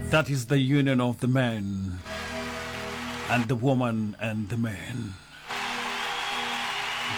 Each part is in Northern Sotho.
That is the union of the man and the woman and the man.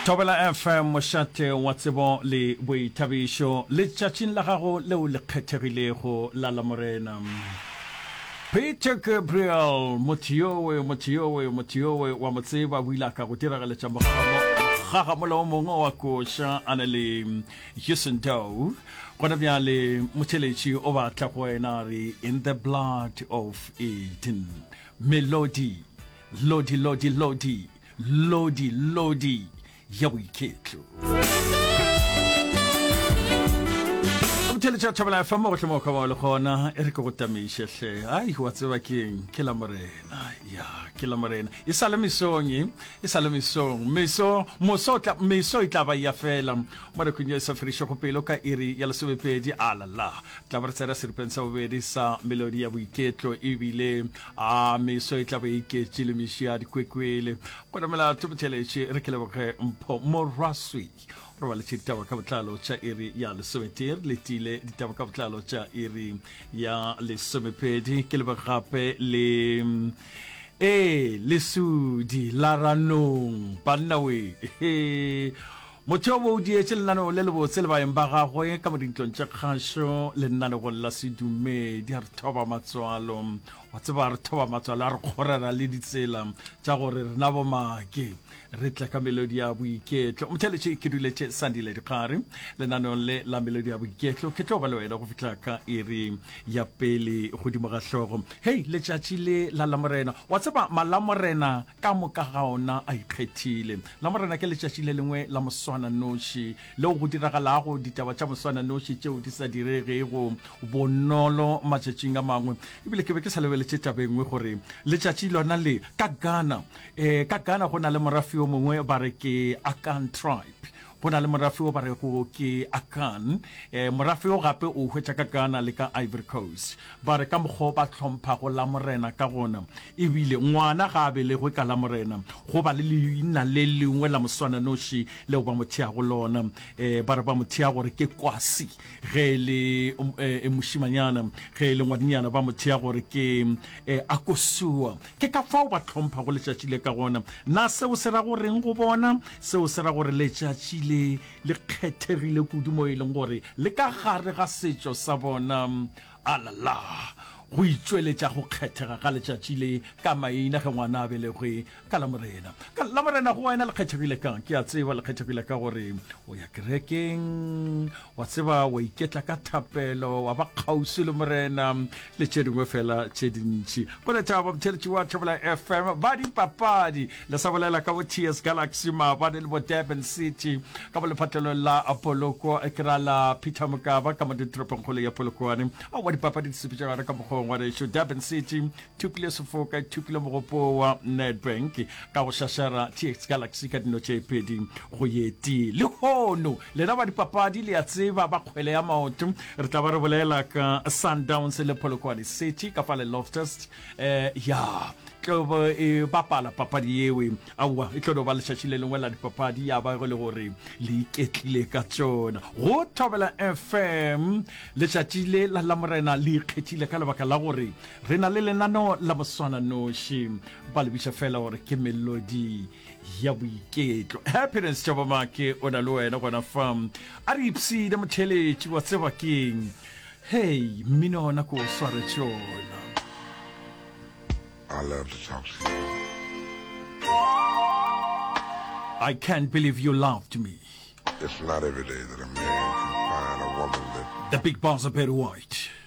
Tobela FM mošate wa tsebo le boithabišo letšatšing la gago leo le kgethegilego la la morena. Peter Gabriel motho yowe motho yowe motho yowe wa mo tseba o ile a ka go diragaletša mogagamo gagamolo o mongwe wa koša a na le Jason Doe, gona bjale motheletši o batla go wena a re in the blood of eden melodi lodi lodi lodi lodi lodi ya boiketlo motheletša thobela fa mo gohle mo kgaba le gona e re ke go tamiše hle ai wa tseba keng ke la morena ya ke la morena e sa le mesong e E sa le mesong, meso, moso o tla, meso e tla ba ya fela. Mo nakong ye e sa fedišwego pelo, ka iri ya lesomepedi, a la la, re tla ba re tsena seripeng sa bobedi sa melodi ya boiketlo, e bile, a, meso e tla be e iketše le meši a dikwekwele. Gona melato, botšeletše, re ke leboge Mpho, Morwa Sweet. Re baletše ditaba ka botlalo tša iri ya lesometee re letile ditaba ka botlalo tša iri ya lesomepedi ke lebe gape le ee lesudi la ranong bannawe motho yo bo o dietše lenaneo le lebotse le baeng ba gagwe ka mo dintlong tše kgašo lenanegong la sedumedi a re thoba matswalo wa tseba re thoba matswalo a re kgorera le ditsela tša gore rena bomake re tla ka melodi ya boiketlo motheletše ke duletše sandile dikgare lenaneong le la melodi ya boiketlo ke tlo ba le wena go fitlha ka iri ya pele godimo ga hlogo hei letšatši le la lamorena wa tseba malamorena ka moka ga ona a ikgethile lamorena ke letšatši le lengwe la moswana noši leo go diragalago ditaba tša moswana noši tšeo di sa diregego bonolo matšatšing a mangwe ebile ke be ke sa lebeletše tabengwe gore letšatši lona le ka gana E, ka Ghana go na le morafi o mongwe ba re ke Akan tribe go na le morafi o ba re go ke Akan e, morafi o gape o hwetša ka Ghana le ka Ivory Coast ba re ka mokgwa ba tlhompha go la morena ka gona ebile ngwana ga a belegwe ka la morena go ba le leina le lengwe la moswananoši leo ba mo theago lona e, ba re ba mo thea gore ke kwasi ge e le e, e mošimanyana ge e le ngwadinyana ba mo thea gore ke e, akosua Ke ka fao ba hlomphhago letšatši le ka gona. Na seo se ra go re'ng go bona? Seo se ra gore letšatši le le kgethegile kudu moo e leng gore le ka gare ga setšo sa bona. Alala! Go itšweletša go kgethega ga letšatši le ka maina ge ngwana a belegwe ka Lamorena. Ka Lamorena go wena le kgethegile ka'ng? Ke a tseba le kgethegile ka gore o ya kerekeng, Wa tseba, wa iketla ka thapelo, wa ba kgauswi le Morena, le tše dingwe fela tše dintši. Boleta babutheletši wa Thobela FM ba dipapadi le sa bolela ka bo TS Galaxy maabane le bo Durban City ka bo lephatlelong la Poloko ke ra la Peter Mokaba ka mo ditoropongkgolo ya Polokwane. Aowa, dipapadi di sepetšagare ka mokgweng wa rešo. Durban City Thukile sefoka, e thukile mogopo wa Nedbank ka go šašara TX Galaxy ka dino tše pedi go ye tee. Lehono, lena ba dipapadi le a tseba ba kgwele ya maoto, re tla ba re bolela ka Sundowns le Polokwane City ka pale Loftus. Eh, ya, tlo bo e bapala papadi yewe. Aowa, e tlo no ba lešatši le lengwe la dipapadi ya ba go le gore le iketlile ka tsona. Go Thobela FM, letšatši le la Lamorena le ikgethile ka lebaka la gore Re na le lenaneo la moswananoši, ba le bitša fela gore ke Melodi ya Boiketlo. Happiness Tšabamake o na le wena gona fa. A re ipshine motheeletši, wa tseba keng? Hei, mmino ona ko o swaretše ona. Alert Tšabamake. I can't believe you loved me. It's not every day that a man can find a woman that. The Big Boss Barry White.